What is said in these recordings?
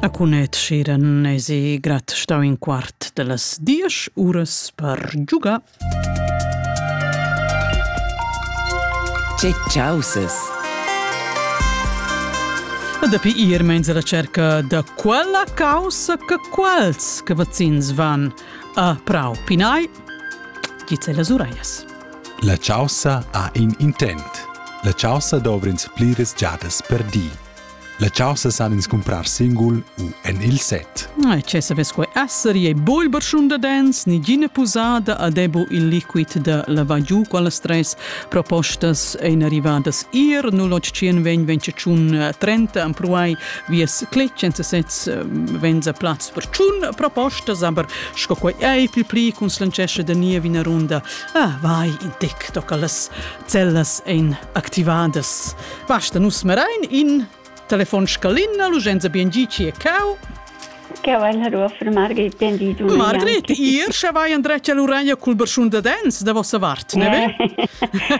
A cunet schiran esi grat stau in quart de las diesch uras per giugar. Che causes! Dapi ir meins la cerca da quella causa che quels che vazzins van a prau pinai, gizze las uraias. La chaussa ha in intent. La chaussa dovr'ins pliras giadas per di. La chaussa san ins cumprar singul u en il set. Ai, ce savess quei esser, ei bol berschun da dens, ni gina pusada a debo il liquid da lavagiu quala stress propostas ein arrivadas ir 0800 ven ventschun 30 am pruai vies cletg senza sez venza plaz per tschun propostas aber sco quei ei pil pli cun slancesce da nia vina runda Ah, vai in tec tocca las zellas ein activadas. Basta nus merain in telefon scalina, l'urgenza bien gi ci e cau. Che vai la rua per Margrit ben di du. Margrit, ihr sche vai an dreccia l'uraglia cul berschun da dens da vossa vart, ne ve?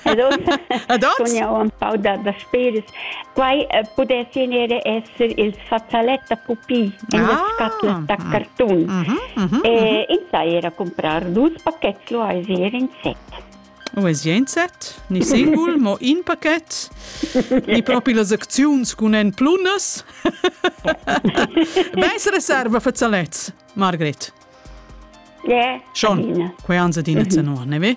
Ad oz. Ad oz. Kun jau un pau da da spairs. Quai pudess vegnir esser il fazzalet da pupi en las scatlas da cartun. E ins ha era cumprà dus pachets luaisi er in set. Uesi ein set, ni singul, mo in paket, ni propi las acziuns cun en plunas. Beis reserva fazzalets, Margret. Yeah. Schon, quei ans adina zanor, ne ve?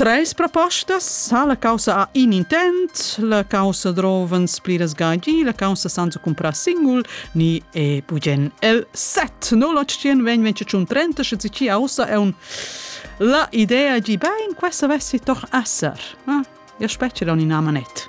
Treis propostas sa la caussa ha in intent, la caussa drovens pliras gagi, la caussa sanza comprar singul, ni è bugen el set. No l'octien vegn venci tschun trenta, sche ci aussa è un la idea gi bein, questa vessi toch esser. Ah, io specie da un'ina manet.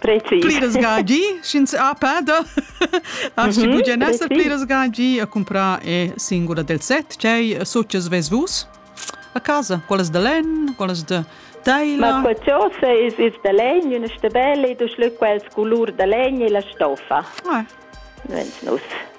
Pliras gagi, sch'ins ha peda, als ci pudien esser pliras gagi a comprar e singula del set, tgei success ves vus? A casa, quellas de len, quellas de teila. Ma quel tiosa is is de legn, una stebella, e dus lü quels colur de legn e la stoffa. Ah. Nus.